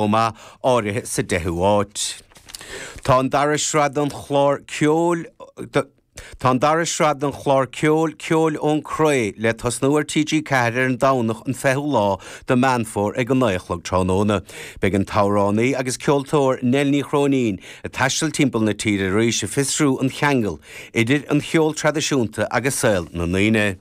chomh maith, áirithe sa 10ú áit. Tá an dara sraith den chlár ceoil Tá an dara sraith den chlár ceoil Ceol ón Chré le tosnú ar TG4 ar an Domhnach an 20ú lá de Meán Fómhair ag a 9 a chlog tráthnóna. Beidh an t-amhránaí agus ceoltóir Nell Ní Chróinín ag taisteal timpeall na tíre arís ag fiosrú an cheangail idir an cheol traidisiúnta agus saol na ndaoine.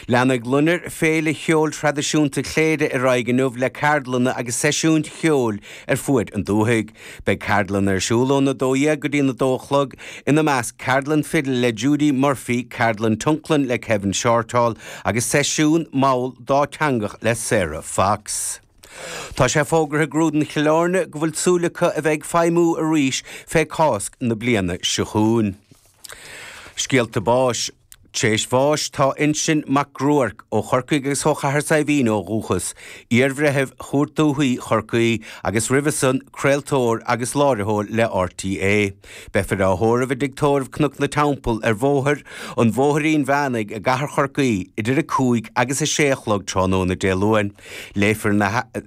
Leanfaidh Loinnir, féile cheoil thraidisiúnta Chléire, ar aghaidh inniu le ceardlanna agus seisiúin cheoil ar fuaid an dúthaigh. Beidh ceardlanna ar siúl óna 12 go dtí'n 2 a chlog, ina measc ceardlann fidil le Judy Murphy, ceardlann tionlacain le Kevin Shortall agus seisiún mall dáteangach le Sarah Fox. Tá sé fógartha ag Grúdlann Chill Áirne go bhfuil súil acu a bheith ag feidhmiú arís fé Cásc na bliana seo chugainn. Scéalta báis. Tréis bháis tá Uinsin Mac Gruairc, ó Chorcaigh agus ó Chathair Saidhbhín ó dhúchas, iar-bhreitheamh Chúirt Dúthaí Chorcaí agus roimhe san craoltóir agus láithreoir le RTÉ. Beifear á thórramh i dTigh Tórraimh Cnoc na Teampall ar Bhóthar an Bhóithrín Mheánaigh i gCathair Chorcaí idir 5 agus 6 a chlog tráthnóna Dé Luain. Léifear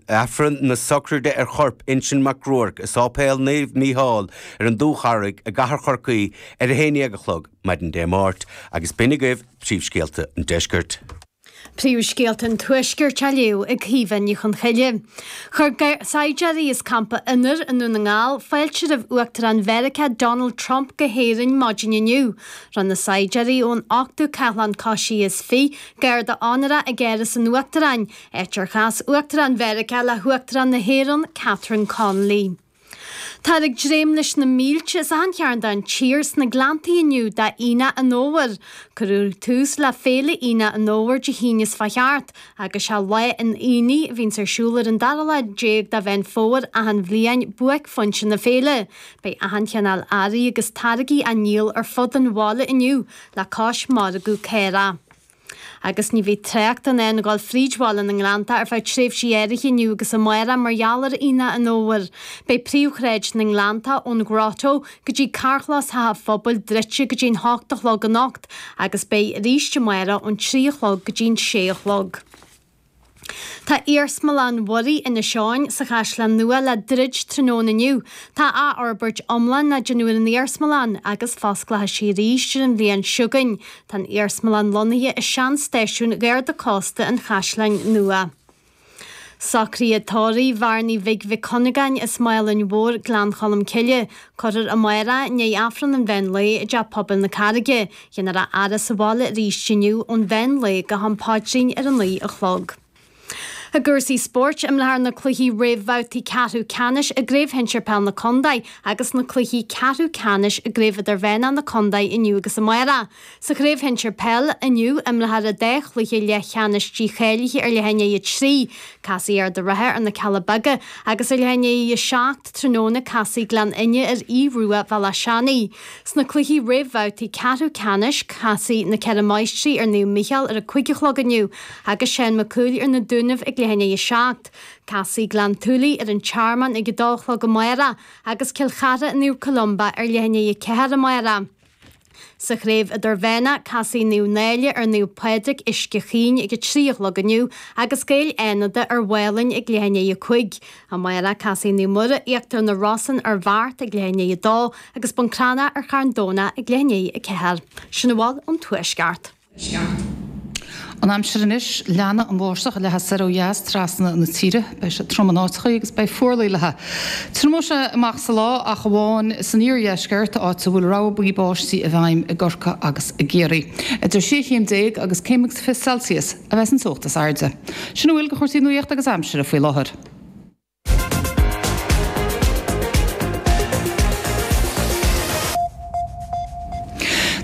Aifreann na Sochraide ar chorp Uinsin Mac Gruairc i Sáipéal Naomh Mícheál ar an Dúcharraig i gCathair Chorcaí ar 11 a chlog. maidin Dé Máirt agus b'in agaibh príomhscéalta an Deiscirt. Príomhscéalta an Tuaiscirt á léamh ag Caoimhe Ní Chonchoille. Chuir saighdiúirí as Campa Fhionnúir i nDún na nGall fáilte roimh Uachtarán Mheiriceá Donald Trump go hÉirinn maidin inniu. Rinne na saighdiúirí ón Ochtú Cathlán Coisithe is Fiche garda onóra ag Áras an Uachtaráin, áit ar chas Uachtarán Mheiriceá le hUachtarán na hÉireann Catherine Connolly. Táthar ag dréim leis na mílte as achan chearn den tír sna Gleanntaí inniu d'Aonach an Fhómhair. Cuireadh tús le féile Aonach an Fhómhair Dé hAoine seo a chuaigh thart, agus sé lá an aonaigh a bhíonns ar siúl ar an dara lá déag de Mheán Fómhair achan bhliain buaicphointe na féile. Beidh achan chineál earraí agus táirgí á ndíol ar fud an bhaile inniu le cois margadh caorach. Agus ní bheidh trácht in ann a ghabháil fríd bhaile na nGleanntach ar feadh tréimhsí áirithe inniu agus amárach mar gheall ar Aonach an Fhómhair. Beidh príomhshráid na nGleanntach, ón Ghrotto go dtí Carrchlós Theach an Phobail, druidte go dtí an hocht a chlog anocht agus beidh arís amárach ón trí a chlog go dtí an sé a chlog. Tá Iarsmalann Mhuirí Inis Eoghain sa Chaisleán Nua le druid tráthnóna inniu. Tá athfhorbairt iomlán á déanamh ar an iarsmalann agus fosclóidh sí arís ar an bhliain seo chugainn. Tá an iarsmalann lonnaithe i sean-stáisiún Gharda Cósta an Chaisleáin Nua. Socruithe tórraimh Bhearnaí Bhig Mhic Cuinneagáin as Málainn Mhór, Gleann Cholm Cille, cuirfear amárach i ndiaidh Aifreann an mheán lae i dTeach Pobail na Carraige, Dhéanfar a fhaire sa bhaile arís inniu ón mheán lae go ham paidrín ar a naoi a chlog. I gcúrsaí spóirt, imreofar na cluichí réamhbhabhtaí ceathrú ceannais i gCraobh Shinsir Peil na Contae agus na cluichí ceathrú ceannais i gCraobh Idirmheánach na Contae inniu agus amárach. Sa Chraobh Shinsir Peil inniu, imreofar an dá chluiche leathcheannais dícháilithe ar leath i ndiaidh a 3, casfaidh Ard a' Rátha ar na Cealla Beaga, agus ar leath i ndiaidh a 7 tráthnóna casfaidh Gleann Fhinne ar Aodh Ruadh Bhéal Átha Seanaidh. Sna cluichí réamhbhabhtaí ceathrú ceannais, casfaidh Na Ceithre Máistrí ar Naomh Micheál ar a cúig a chlog inniu agus Seán Mac Cumhaill ar Na Dúnaibh ag leath i ndiaidh a seacht. Casfaidh Gleann tSúilí ar An Tearmann ag a dó a chlog amárach agus Cill Chartha ar Naomh Columba ar leath i ndiaidh a ceathair amárach. Sa Chraobh Idirmheánach, casfaidh Naomh Náille ar Naomh Pádraig Uisce Chaoin ag a trí a chlog inniu agus Gaeil Fhánada ar Mhálainn ag leath i ndiaidh a cúig. Amárach casfaidh Naomh Muire Íochtar na Rosann ar Bheart ag leath i ndiaidh a 2 agus Bun Cranncha ar Charn Domhnach ag leath i ndiaidh a 4. Sin a bhfuil ón Tuaisceart. An aimsir anois, leanfaidh an bháisteach ag leathadh soir ó dheas trasna na tíre. Beidh sé trom in áiteachaí agus beidh fuarlaigh léithi. Triomóidh sé amach sa lá ach amháin san iardheisceart, áit a bhfuil rabhadh buí báistí i bhfeidhm i gCorcaigh agus i gCiarraí. Idir sé chéim déag agus céim agus fiche Celsius. a bheas an teocht is airde. Sin a bhfuil de chúrsaí nuaíochta agus aimsire faoi láthair.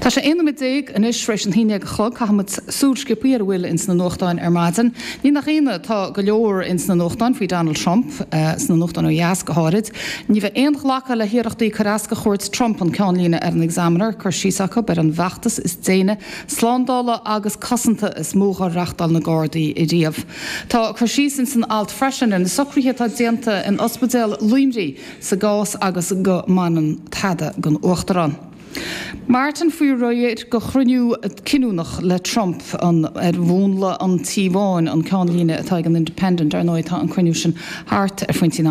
Tá sé 11 nóiméad anois tar éis a haon déag a chlog. Caithfimid súil sciobtha ar a bhfuil ins na nuachtáin ar maidin. Ní nach ionadh, tá go leor ins na nuachtáin faoi Donald Trump, sna nuachtáin ó dheas go háirid. Ní bheidh aon ghlacadh le hiarrachtaí cur as do chuairt Trump an ceannlíne ar an Examiner, cur síos acu ar an bhfeachtas is déine Slándála agus Cosanta is mó dhár reachtáil na Gardaí riamh. Tá cur síos ins an alt freisin ar na socruithe atá déanta in Ospidéal Luimnigh sa gcás agus go mbaineann tada don Uachtarán Martin faoi réir do chruinniú cinniúnach le Trump ar mhúnla an Tí Bháin an ceannlíne atá ag an Independent. Ar ndóigh tá an cruinniú sin thart ar phointí an